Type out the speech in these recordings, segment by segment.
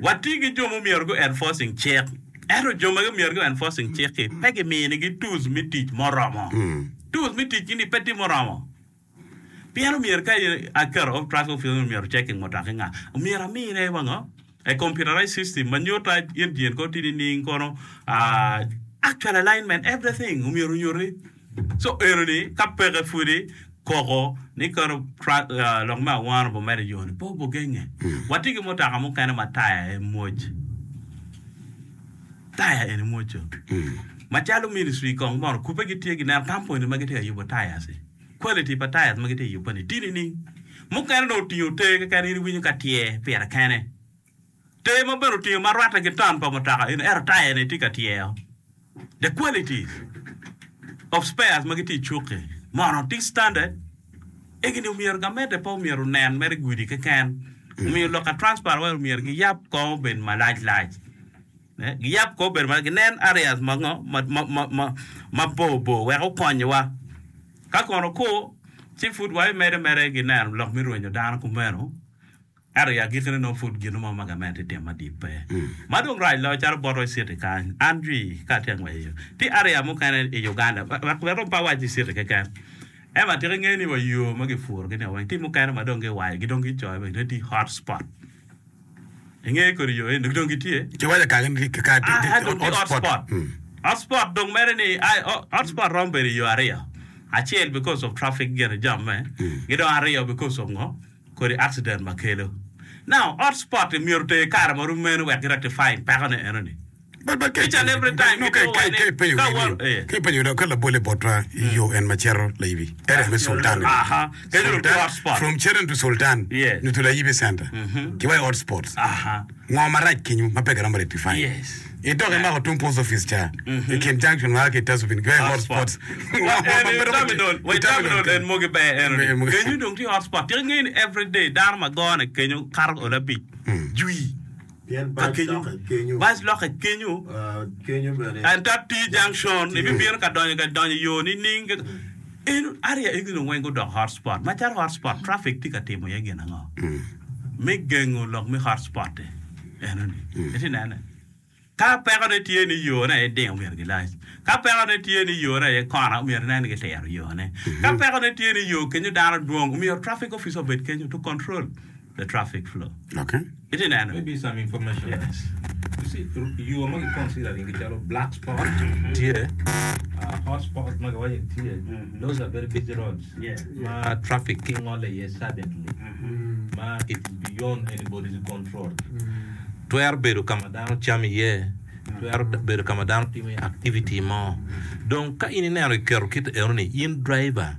Wati ki jo ma omyero gu enforcing cik, ento jo ma omyero gu enforcing cik-ki pe gimini gi tools me tic muromo. Tools me tic gi ni pe tye muromo. Pien omyero ka in aketo of traffic officer ni omyero checking mutoki nga, omyero amine wa ngo? A computerized system ma nyuta engine ko tye nining kono, actual alignment, everything omyero onyuti. Co enoni ka peke pwodi koko ni kano lok me awano bo mere yoni pe obogenge. Watye ki mutoka mukene ma taya aye mwoc, taya eni mwoco. Macalo ministry kong mono kubbe gitye ginen kampuni ma gitye ka yubo tayas-si, quality pa tayas ma gitye ka yubbe-ni tye nining? Mukene dong otingo te keken in iwinyo ka tyer pire kene. Tee ma obedo otingo ma rwatte ki ton pa mutoka in ero taya ne tye ka tyeo. The quality of spares ma gitye i cuk-ki mono tye standard? Egi ni omyero gamente pe omyero onen mere i gudi keken. Omiyo loka transport wire omyero giyab kong obed malac lac. Giyab kong obed malac ginen areas ma ngo ma ma bor bor wek okonyowa. Ka kono kur ci pud wabimede mere ginen lok me rwenyo dano kumeno. Ento i agikkine nongo pud gin mo ma gamente itimo adit pe. Ma dong rac loyo calo bot wa i citi kany, an jwi ka atye ka ngwec i yo. Tye aria mukene i Uganda, wek wek dong pe awac i citi keken. Ema tika ingeyo ni wa yo ma gipuro gi ni wa weng, tye mukene ma dong giwaco gi dong gicoyo bene ni tye hot spot. Ingeyo kodi yo eni dong gitye? Ci iwaco kaka ni tye kaka tye Aa, dong tye hot hot spot. spot. Mm. Hot spot dong mere ni ai, o- hot spot romo bedo i yo ario. Acel because of traffic gire jamme, ki dong ario because of ngo? kodi accident ma kelo. Now hot spot i myero oter kare ma rum mene wek ki rectify peko ne eno ni. But but each and every time ki dong wai ni ka wa ee. Ka ipenyo wi ka labol i botwa i yo en ma cito layibi area me sultan eni. Aha kene dong tye hot spot. From children to sultan. Yeah. Nyo to layibi center. Ki wa i hot spot. Aha. Ngo marac kenyu ma pe giromo rectify? I tok imako tung post office ca i kin junction ma a ki i Tasubin go i hot spots. Ngo ma pe doko ci i terminal kenyu? Kenyu dong tye hot spot. Tika ingeyo ni every day dano ma gone kenyu kato olo abic jwi ka kenyu. Bac lok i kenyu. Ento T junction ibibino ka donyo ga idonyo i yo nining? Eno, area egi dong weng gudoko hot spot. Macalo hot spot, traffic tye ka timo iye gin ango me gengo lok me hot spot-ti? Enoni, itye nene? Ka pekone tye ni yone aye ding omyero gilac. Ka pekone tye ni yone aye kona, omyero inen ni gitiro yone. Ka pekone tye ni yo kenyo dano dwong, omyero traffic officer obed kenyo to control. the traffic flow. Itye neno? Twero bedo ka ma dano camo iye, twero bedo ka ma dano timo iye activity mo. Dong ka in ineno kiketo kit enoni, in driver,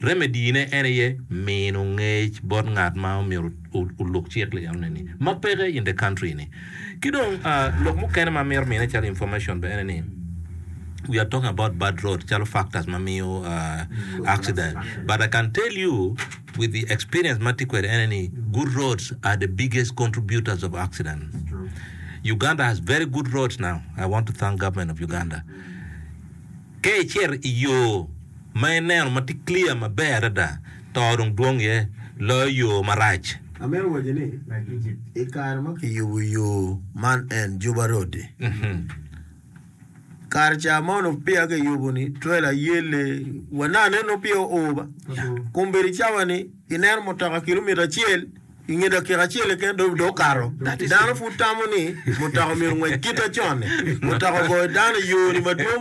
Remedine en aye mino ngec bot ngat ma omyero oluk cik li eno ni ma peke in the country ni. Ki dong lok mukene ma amyero mine calo information be ene ni we are talking about bad road calo factors ma miyo accident but I can tell you with the experience ma atye kwede ene ni good roads are the biggest contributors of accident. Uganda has very good roads now I want to thank government of Uganda. Ka icito i yo ma ineno ma tye clear maber adada, to dong dwong iye loyo yo marac. I kare ma kiyubo yo man en Juba Road-di, kare ca mono peya kiyubo-ni trela yelle wa nanga nen nongo peya oo ba. Kombeddi cawa-ni ineno mutoka kilomita acel i nge dakika acel keken dong okato. Dano pud tamo ni mutoka myero ongwec kite con-ni. Mutoka ogoyo dano i yo-ni madwong.